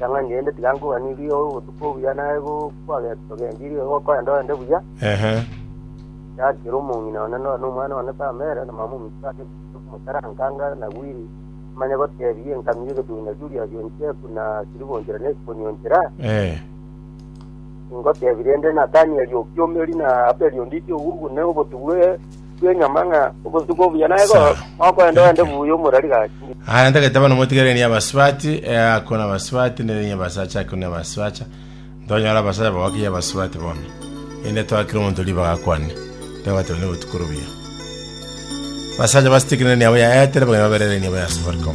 Ring'ana rinde tiga nkogwanirie obotuko obuya na egokwagete togendirie egokoenda oende buya. Ehe. Tiga kera omong'ina one nore nomwana one tama ere na mama ominto ase ekibugu ekimokaranka anga nagwire, amanye goteebia enkabi y'egetung'ina Juliasi oncheku na Siliva onchera na Esiponi onchera. Eh. Ingoteebia rende Natanieli o Kiomeri na Abeli onditi ogugu ne obotubu e bw'enyama ng'a obotuko obuya naye go- Sawa. gokoenda oende buya omorari gachire. Aya ntagete abana motigere ni abasubati, eh, ako na abasubati, nere ni abasacha, ako ni abasacha. Ntonyora abasacha bagokiya abasubati bono. Inde twakire omonto ribaga akwane. Ntabatebe ni obotuko obuya. Basacha basitikire ni abo yaetere bagenda baberere ni abo ya Safaricom.